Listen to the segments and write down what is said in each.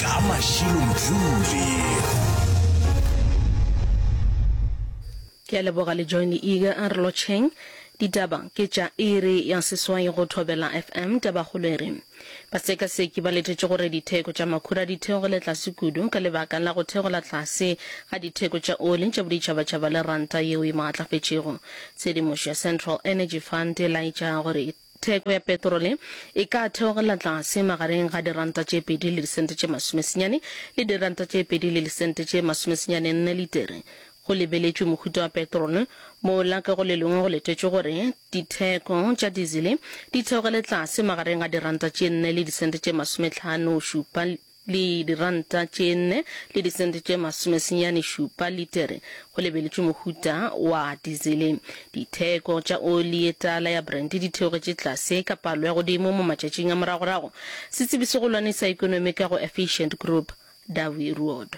ka mašilo mdluli. Ke a leboga le join ega a re lotšheng. Ditaba ke tša iri ya seswai go Thobela FM. Tabakgolo e re, Basekaseki ba letetše gore ditheko tša makhura di theogile tlase kudu ka lebaka la go theola tlase ga ditheko tša oli tša boditšhabatšhaba le ranta yeo e maatlafetšego. Tshedimošo ya Central Energy Fund e laetša gore, Theko ya petrole e ka theogela tlase magareng ga diranta tše pedi le disente tše masomesenyane le diranta tše pedi le disente tše masomesenyane nne litere. Go lebeletšwe mohuta wa petrole, mola ka go le lengwe go letetšwe gore ditheko tša dizele di theogele tlase magareng ga diranta tše nne le disente tše masometlhano šupa le diranta tše nne le disente tše masomesenyane šupa litere, go lebeletšwe mohuta wa dizele. Ditheko tša oli ye tala ya Brent di theogetše tlase ka palo ya godimo mo matšatšing a moragorago, setsebi se golwane sa ekonomi ka go Efficient Group, Dawie Ruodo.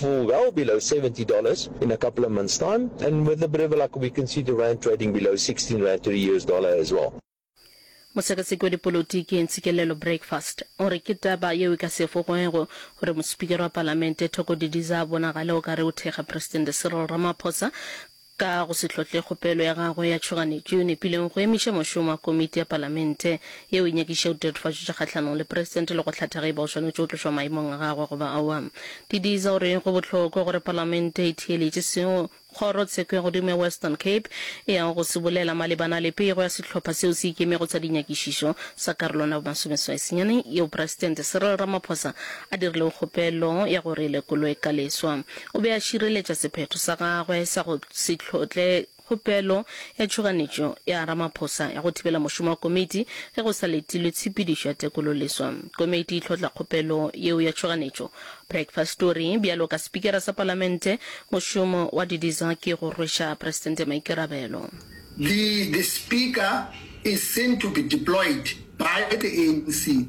to well below 70 dollars in a couple of months time and with a bit of luck we can see the rand trading below 16 rand to the US dollar as well. Mosekaseki wa dipolotiki Ntsikelelo Breakfast o re ke taba yeo e ka se efogwego gore mosepikara wa palamente Thoko Didiza a bonagale o ka re o thekga Presidente Cyril Ramaphosa Ka go se hlotle kgopelo ya gagwe ya tšhoganetšo, Nepileng go emiša mošomo wa komiti ya palamente yeo e nyakišago ditatofatšo tša kgahlanong le presidente le go hlatha ge e ba o swanetše go tlošwa maemong a gagwe goba aowa. Didiza o re go bohlokwa gore palamente e theeletše seo kgoro tsheko ya godimo ya Western Cape e yago go se bolela malebana le pego ya sehlopha seo se ikemego sa dinyakišišo sa karolwana ya bomasomeswai senyane yeo presidente Cyril Ramaphosa a dirilego kgopelo ya gore e lekolwe ka leswa. O be a šireletša sephetho sa gagwe sa go se tlhotle kgopelo ya tšhoganetšo ya Ramaphosa ya go thibela mošomo wa komiti ge go sa letilwe tshepedišo ya tekololeswa. Komiti e tlhotla kgopelo yeo ya tšhoganetšo. Breakfast o re, Bjalo ka Spikara sa Palamente, mošomo wa Didiza ke go rweša Presidente maikarabelo. The, the Speaker is seen to be deployed by the ANC.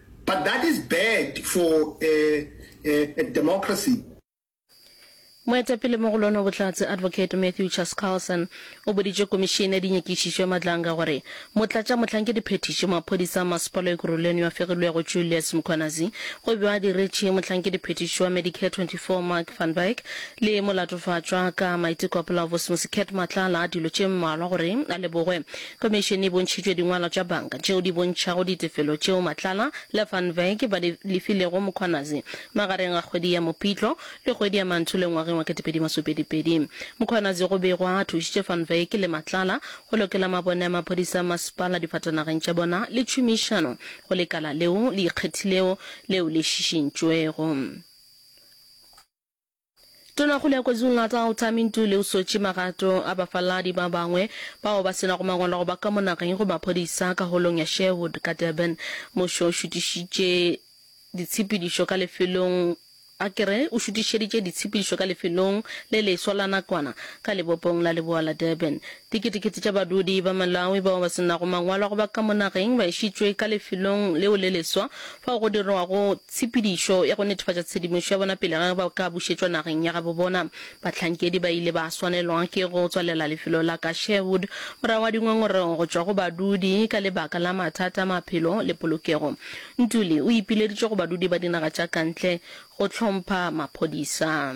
But that is bad for a, a, a democracy. Moetapele mo go lono Bohlatse Advocate Matthew Chas Carlson o boditše Komišene ya Dinyakišišo ya Matlanga gore Motlatša Mohlankedi Phethiši wa Maphodisa a Masepala Ekurhuleni yo a fegilwego Julius Mkhwanazi o be a diretše Mohlankedi Phethiši wa Medicare 24 Mark van Wyk le Molatofatšwa ka Maiteko a Polaobosemose Cat Matlala dilo tše mmalwa gore a lebogwe Khomišene e bontšhitšwe dingwalo tša banka tšeo di bontšhago ditefelo tšeo Matlala le Van Wyk ba di lefilego Mkhwanazi magareng ga kgwedi ya Mopitlo le kgwedi ya Mantule ngwageng wa 2022. Mkhwanazi go begwa a thušitše Van Wyk le Matlala go lokela mabone a maphodisa a masepala difatanageng tša bona le tšhomišano go lekala leo le ikgethilego leo le šišintšwego. Tonakgolo ya KwaZulu-Natal Tami Ntuli o swetše magato a bafaladi ba bangwe bao ba se nago mangwalo go ba ka mo nageng go maphodisa ka holong ya Sherwood ka Durban. Mmušo o šutišitše ditshepedišo ka lefelong a ke re o šutišeditše ditshepedišo ka lefelong le leswa la nakwana ka lebopong la leboa la Durban. Diketekete tša badudi ba Malawi bao ba se nago mangwalo a go ba ka mo nageng ba išitšwe ka lefelong leo le leswa fao go dirwago tshepedišo ya go netefatša tshedimošo ya bona pele ga ge ba ka bušetšwa nageng ya gabo bona. Bahlankedi ba ile ba swanelwa ke go tswalela lefelo la ka Sherwood morago ga dingongorego go tšwa go badudi ka lebaka la mathata a maphelo le polokego. Ntuli o ipileditše go badudi ba dinaga tša kantle go hlompha maphodisa.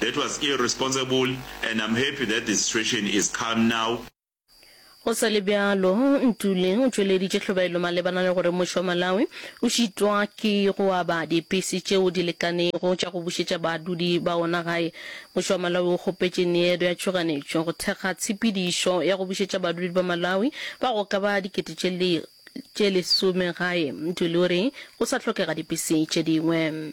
That was irresponsible and I'm happy that the situation is calm now. Go sa le bjalo, Ntuli o tšweleditše tlhobaelo malebana le gore mmušo wa Malawi o šitwa ke go aba dipese tšeo di lekanego tša go bušetša badudi ba wona gae. Mmušo wa Malawi o kgopetše Needo ya Tšhoganetšo go thekga tshepedišo ya go bušetša badudi ba Malawi ba go ka ba dikete tše tše lesome gae. Ntuli o re go sa hlokega dipese tše dingwe.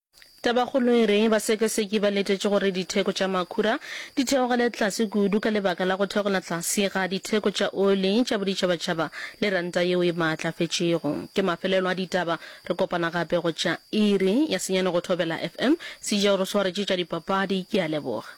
Tabakgolo e re, basekaseki ba letetše gore ditheko tša makhura di theogele tlase kudu ka lebaka la go theogela tlase ga ditheko tša oli tša boditšhabatšhaba le ranta yeo e maatlafetšego. Ke mafelelo a ditaba. Re kopana gape go tša iri ya senyane go Thobela FM. Sejao re swaretše tša dipapadi. Ke a leboga.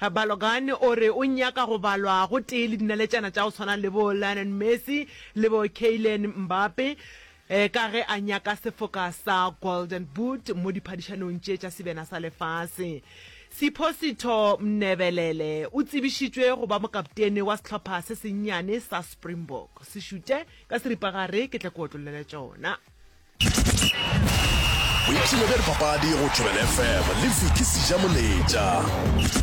Balogan o re o nyaka go balwa gotee le dinaletšana tša go tshwana le bo Lionel Messi le bo Kylian Mbappe ka ge a nyaka sefoka sa Golden Boot mo diphadišanong tše tša Sebjana sa Lefase. Siphositho Mnebelele o tsebišitšwe go ba mokaptene wa sehlopha se sennyane sa Springbok. Se šute ka seripagare ke tle ke otlollele tšona. Boipshino bja dipapadi go Thobela FM le Vicky Sijamoletša.